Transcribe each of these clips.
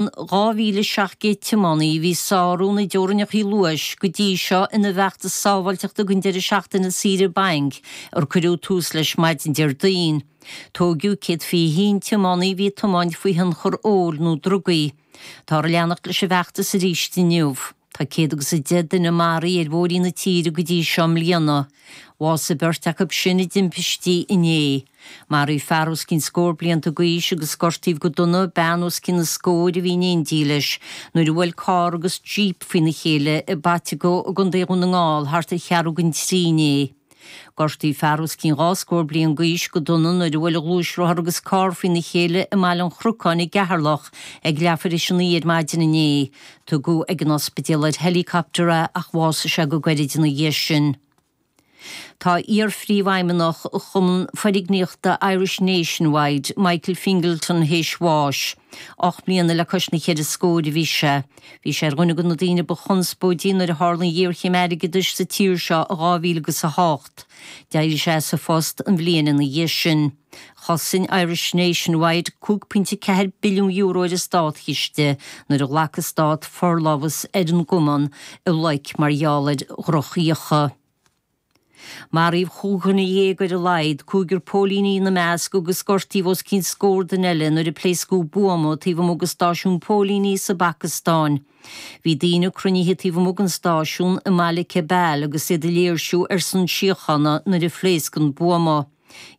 2,700 tiománaí a bhí ag sárú na dteorainneacha luais go dtí seo ina bhfeachtas sábháilteachta don deireadh seachtaine saoire bainc ar cuireadh tús leis maidin Déardaoin. Tóigeadh 121 tiománaí a bhí ag tiomáint faoi thionchar óil nó drugaí. Táthar ag leanacht leis an bhfeachtas arís inniu. Tá céad agus a deich duine maraithe ar bhóithrí na tíre go dtí seo i mbliana. Bhásaigh beirt acu sin i dtimpistí inné. Maraíodh fear os cionn scór blianta d'aois agus gortaíodh go dona bean os cionn na scóir a bhí in éindí leis nuair a bhuail carr agus jíp faoina chéile i bPaiteagó i gContae Dhún na nGall thart ar cheathrú chun a trí inné. Gortaíodh fear os cionn dhá scór bliain d'aois go dona nuair a bhuail gluaisrothar agus carr faoina chéile i mBaile an Chrocáin i gCeatharlach ag leathuair théis a naoi ar maidin inné. Tugadh ag an ospidéal ar helicopter é ach bhásaigh sé go gairid ina dhiaidh sin. Tá iar-phríomhfheidhmeannach chumann foirgníochta Irish Nationwide, Michael Fingleton théis bháis. Ocht mbliana le cois na ceithre scóir a bhí sé. Bhí sé ar dhuine de na daoine ba chonspóidí nuair a tharla an ghéarchéim airgeadais sa tír seo i 2008. D'éirigh sé as a phost an bhliain ina dhiaidh sin. Chosain Irish Nationwide €5.4 billiún ar an státchiste nuair a ghlac an stát forlámhas ar an gcumann i loic mar gheall ar dhrochfhiacha. Maraíodh chúig dhuine dhéag ar a laghad, cúigear póilíní ina measc, agus gortaíodh os cionn scór duine eile nuair a pléascadh buama taobh amuigh de stáisiún póilíní sa bPacastáin. Bhí daoine cruinnithe taobh amuigh den stáisiún i mBaile Cebal agus iad ag léirsiú ar son síochána nuair a phléasc an buama.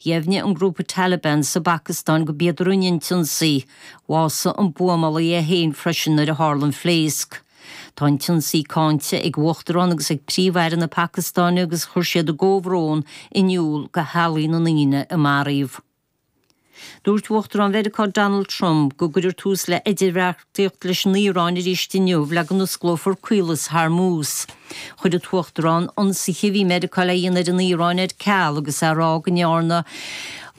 Dheimhnigh an grúpa Taliban sa bPacastáin go b'iad a rinne an t-ionsaí. Bhásaigh an buamálaí é féin freisin nuair a tharla an phléasc. Tá an t-ionsaí cáinte ag uachtarán agus ag príomh-aire na Pacastáine agus chuir siad a gcomhbhrón in iúl go theaghlaigh na ndaoine a maraíodh. Dúirt Uachtarán Mheiriceá Donald Trump go gcuirfear tús le Tíocht leis an Iaráin arís inniu le go n-osclófar Caolas Hormuz. Chuir an tUachtarán ionsaithe a bhí Meiriceá le dhéanamh ar an Iaráin ar ceal agus é ag rá go ndearna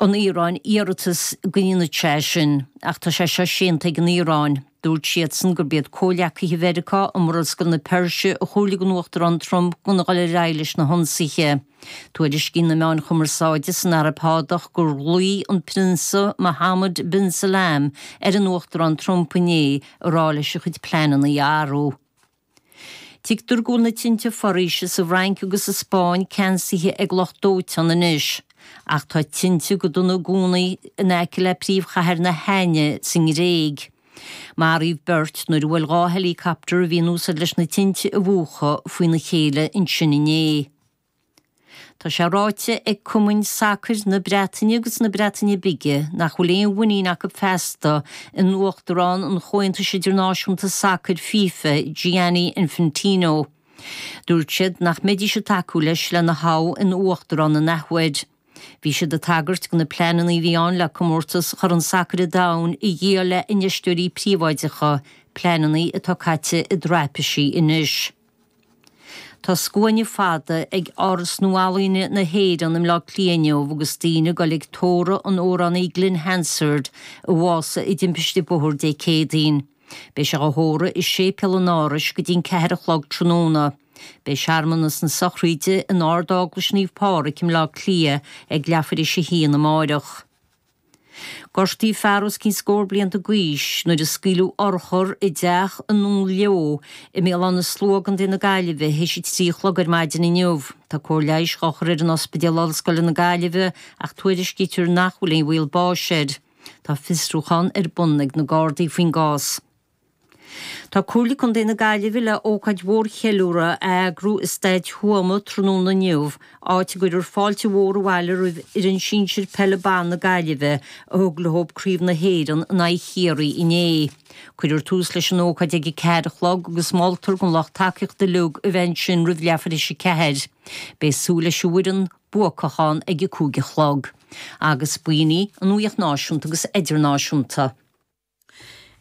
an Iaráin iarratas go ndéanfaí é sin. Ach tá sé seo séanta ag an Iaráin. Dúirt siadsan gurb iad comhghleacaithe Mheiriceá i Murascaill na Peirse a chomhairligh don Uachtarán Trump gan a dhul ar aghaidh leis na hionsaithe. Tuairiscíonn na meáin chumarsáide san Araib Shádach gur ghlaoigh an Prionsa Mohammed bin Salman ar an Uachtarán Trump inné ag rá leis a chuid pleananna a athrú. Tuigtear go bhfuil na tinte foraoise sa bhFrainc agus sa Spáinn ceansaithe ag lucht dóiteáin anois, ach tá tinte go dona i gcónaí in aice le príomhchathair na hAithne sa nGréig. Maraíodh beirt nuair a bhuail dhá helicopter a bhí in úsaid leis na tinte a mhúchadh faoina chéile ansin inné. Tá sé ráite ag cumainn sacair na Breataine agus na Breataine Bige nach bhfuil aon mhuinín acu feasta in uachtarán an Chomhaontais Idirnáisiúnta Sacair, FIFA, Gianni Infantino. Dúirt siad nach mbeidís ag tacú leis lena thoghadh ina uachtarán in athuair. Bhí siad ag tagairt do na pleananna a bhí ann le comórtas Chorn Sacair an Domhain a dhíol le infheisteoirí príobháideacha, pleananna atá caite i dtraipisí anois. Tá scuaine fada ag Áras Nua-Ealaíne na hÉireann i mBleá Cliath inniu agus daoine ag goil ag tórramh an amhránaí Glen Hansard a bhásaigh i dtimpiste bóthair Dé Céadaoin. Beidh sé á thórramh i Séipéal an Árais go dtí an ceathair a chlog tráthnóna. Beidh searmanas na sochraide in Ard-Eaglais Naomh Pádraig i mBleá Cliath ag leathuair tar éis a haon amáireach. Gortaíodh fear os cionn scór blianta d'aois nuair a scaoileadh urchar i dteach i nDún Leodha i mBéal Átha na Sluaighe i gContae na Gaillimhe théis a trí a chlog ar maidin inniu. Tá cóir leighis á chur air in Ospidéal Ollscoile na Gaillimhe ach tuairiscítear nach bhfuil aon bhaol báis air. Tá fiosrúchán ar bun ag na Gardaí faoin gcás. Tá Comhairle Contae na Gaillimhe le ócáid mhór cheiliúrtha a eagrú i Staid Thuama tráthnóna inniu, áit a gcuirfear fáilte mhór abhaile roimh fhoireann sinsir peile ban na Gaillimhe a thug leob Craobh na hÉireann in aghaidh Chiarraí inné. Cuirfear tús leis an ócáid ag a ceathair a chlog agus moltar don lucht tacaíochta uilig a bheith ansin roimh leathuair tar éis a ceathair. Beidh súil leis an bhfoireann buacach ann ag a cúig a chlog. Agus b'in í an nuaíocht náisiúnta agus idirnáisiúnta.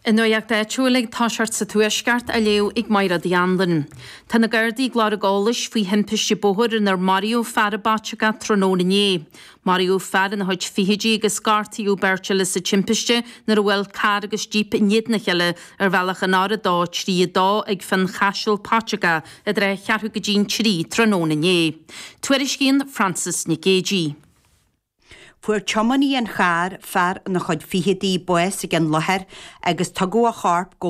An nuacht áitiúil ag tosacht sa Tuaisceart á léamh ag Máire D. Andain. Tá na Gardaí ag lorg eolais faoi thimpiste bóthair inar maraíodh fear i bPaiteagó tráthnóna inné. Maraíodh fear ina chuid fichidí agus gortaíodh beirt eile sa timpiste nuair a bhuail carr agus jíp in éadan a chéile ar bhealach an R232 ag Fionnchaiseal, Paiteagó i dtrátha cheathrú go dtí'n trí tráthnóna inné. Tuairiscíonn Frances Nic Géadaigh. Fuair tiománaí an chairr, fear ina chuid fichidí, bás ag an láthair agus tugadh a chorp go.